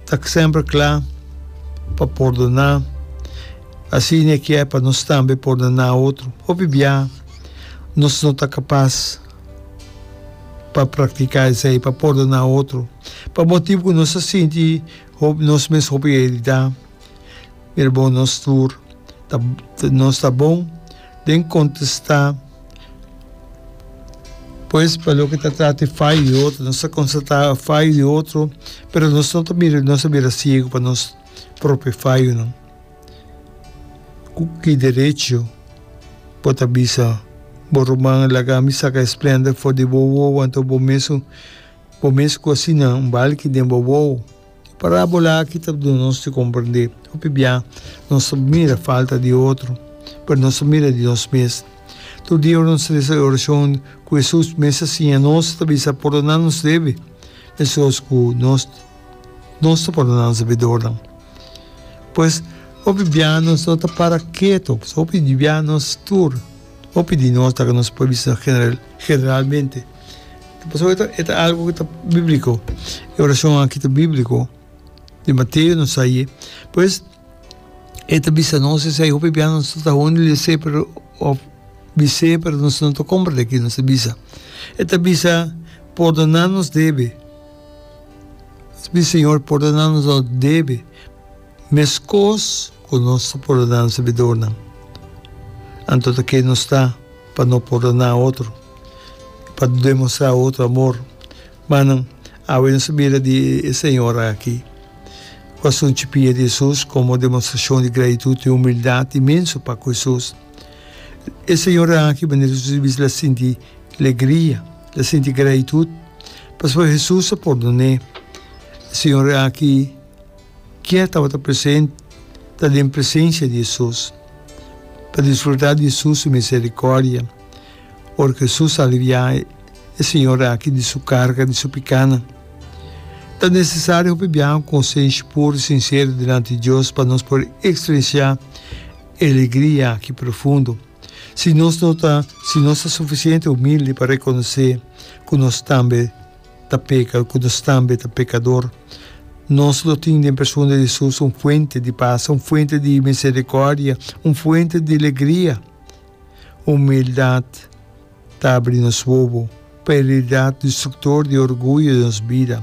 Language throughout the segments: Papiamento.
Ta semper cla pa pordona. Asina e kier pa nos tambe pordona otro. Hopi bia nos no ta capas pa practica esey, pa pordona otro, pa motibu cu nos ta sinti nos mes hopi heridad. Mirabo nos tur, nos ta bon. Den contesta pues pa loke ta trata e fallo di otro nos ta constata e fallo di otro pero nos no ta bira nos ta bira ciego pa nos propio fallonan cu ki derecho bo ta bisa bo ruman laga mi saca e splenda for di bo wowo anto bo mesun bo mes cu asina un balki den bo wowo. E parábola aki ta duna nos di komprendé hopi bia nos ta mira falta di otro, pero nos ta mira di nos mes. Tur dia ora nos ta resa e orashon ku Hesus mes a siña nos, e ta bisa, Pòrdoná nos debe, mescos ku nos nos ta pòrdoná nos debidornan. Pues, hopi bia nos no ta para ketu, hopi di bia nos tur, hopi di nos ta nos por bisa general generalmente. Pasobra e ta e ta algu ku ta bíbliko. E orashon akí ta bíbliko. Den Mateo nos sa i. Pues, e ta bisa nos esei hopi biaha nos no ta awor di les'é pero, òf bis'é pero nos no ta kòmprendé kiko nos ta bisa. E ta bisa, Pordoná nos debe. Nos bisa, Señor, pordoná nos nos debe meskos ku nos ta pordoná nos debidornan. Anto ta ke nos ta. Pa no perdona otro. Pa demostrá otro amor. Manan, awe nos a bira di e señora aki ku a sunchi pia di Hesus komo demostrashon di gratitut i humildat inmenso pa ku Hesus. E señora aki manera ku Hesus a bisa el a sinti legria, el a sinti gratitut pasobra Hesus a pordon'é. E señora aki. Kier tabata present ta den presensia di Hesus pa disfrutá di Hesus su miserikòrdia. Ora ku Hesus aliviá e señora aki di su karga di su pikánan, ta nesesario hopi biaha ku konsenshi puru i sinseru dilanti di Dios pa nos por ekspresiá e alegria aki profundo. Si nos no ta si nos ta sufisiente humilde pa rekonosé ku nos tambe ta peka, ku nos tambe ta pekador. Nos lo tin den persona di Hesus un fuente di pas, un fuente di miserikòrdia, un fuente di legria. Humildat ta abri nos wowo pa e rialdat destruktor di orguyo den nos bida.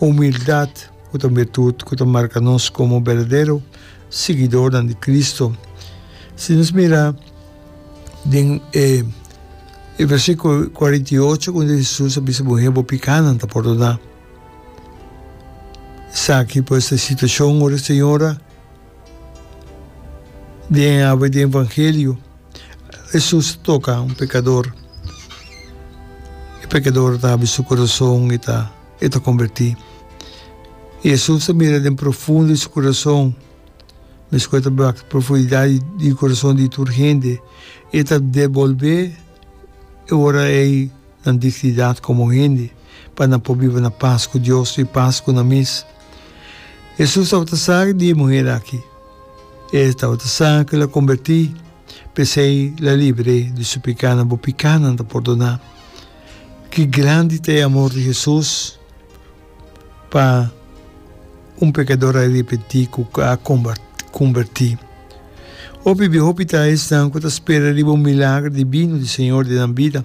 Humildat ku ta un biritud ku ta marka nos komo berdadero siguidornan di Kristu. Si nos mira den e versikulo kuarenta i ocho unda Hesus a bisa muhé, Bo pikánan ta pordoná. Esaki pues ta e situashon ora e señora. Den awe den Evangelio Hesus ta toka un pekador, e pekador ta habri su kurason i ta i ta kombertí. I Hesus ta mira den profundo di su kurason, meskua e ta bira wak profundidat di di kurason di tur hende, e ta debolbé e ora ei nan dignidat komo hende, pa nan por biba na pas ku Dios i pas ku nan mes. Hesus tabata sa di e muher aki. E tabata sa ku el a kombertí, p'esei el a libre di su pekanan. Bo pekanan ta pordoná. Ki grandi ta e amor di Hesus pa un pekador arepentí ku a kombertí! Hopi bia hopi ta esnan ku ta spera riba un milagro divino di Señor den nan bida.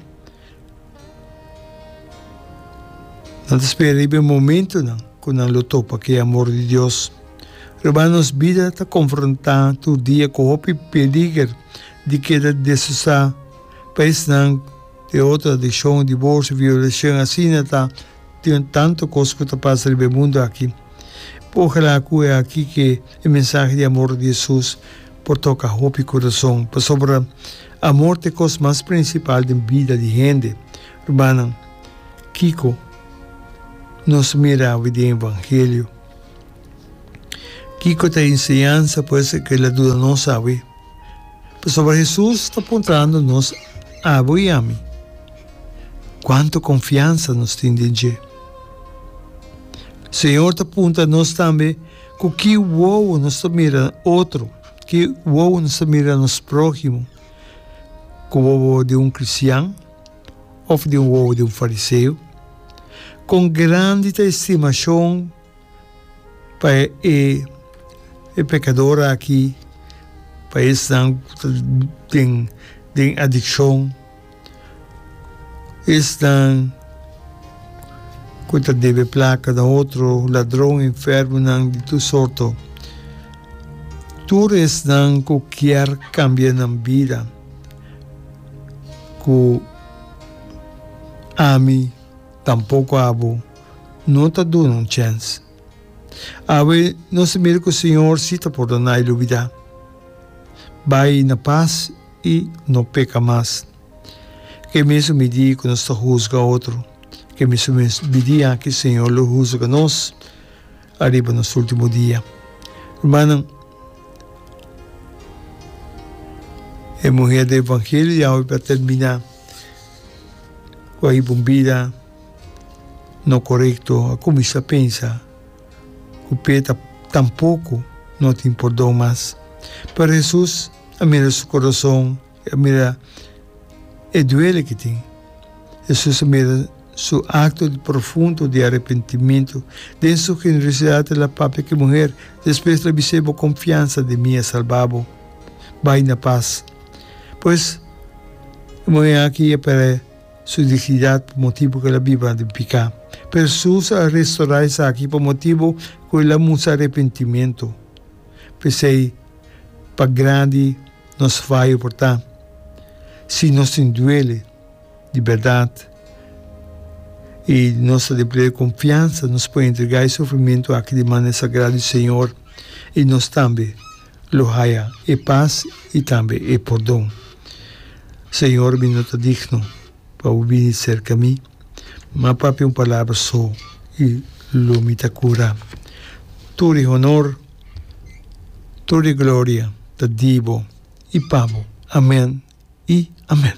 Nan ta spera riba e momentunan ku nan lo topa ku e amor di Dios. Riba nos bida ta konfrontá tur dia ku hopi peliger di keda desusá pa esnan, di otro adikshon, diborsio, violashon, asina ta. Tin tantu kos ku ta pasa riba e mundu aki. Ojalá ku e aki ke e mensahe di amor di Hesus por toka hopi kurason, pasobra amor ta e kos mas prinsipal den bida di hende. Rumannan, kiko nos mira awe den evangelio? Kiko ta e enseñansa pues ke la duda nos awe? Pasobra Hesus ta puntrando nos abo i ami, Kuantu konfiansa nos tin den dje? Señor ta puntra nos tambe ku ki wowo nos ta mira otro, ki wowo nos ta mira nos próhimo, ku wowo di un kristian òf di un wowo di un fariseo? Kon grandi ta e stimashon! pa e pekador aki, pa esnan ku ta den den adikshon, esnan ku ta debe plaka na otro, ladron, enfermonan di tur sorto, tur esnan ku kier kambia nan bida, ku ami tampoko abo. no ta duna un chèns. Awe nos a mira ku Señor si ta pordona i lubidá. Bai na pas i no peka mas. Ke mesun midí ku nos ta husga otro, ke mesun midí aki Señor lo husga nos ariba nos ultimo dia. Rumannan, e muher di evangelio di awe ta terminá ku a hiba un bida. No korekto, a kuminsá pensa ku p'e ta tampoku no tin pordon mas. Pero Hesus a mira su kurason, i a mira e duele ku tin. Hesus a mira su akto di profundo di arepentimentu. Den su generosidat el a papia ku e muher, despues el a bis'é, Bo konfiansa den mi a salba bo. Bai na pas. Pues, e muhé aki a pera. Su dignidat pa motibu ku el a biba den piká. Pero Hesus a restorá esaki pa motibu ku el a mustra arepentimentu. P'esei, pa grandi nos fayo por ta, si nos tin duele di bèrdat i nos ta den pleno di konfiansa, nos por entregá e sufrimentu aki di manera sagrá di Señor i nos tambe lo haya e pas i tambe e pordon. Señor, mi no ta digno pa bo bini cerca mi, ma papia un palabra so i lo mi ta cura. Tur e honor, tur e gloria ta di bo i pa bo. Amen i amen.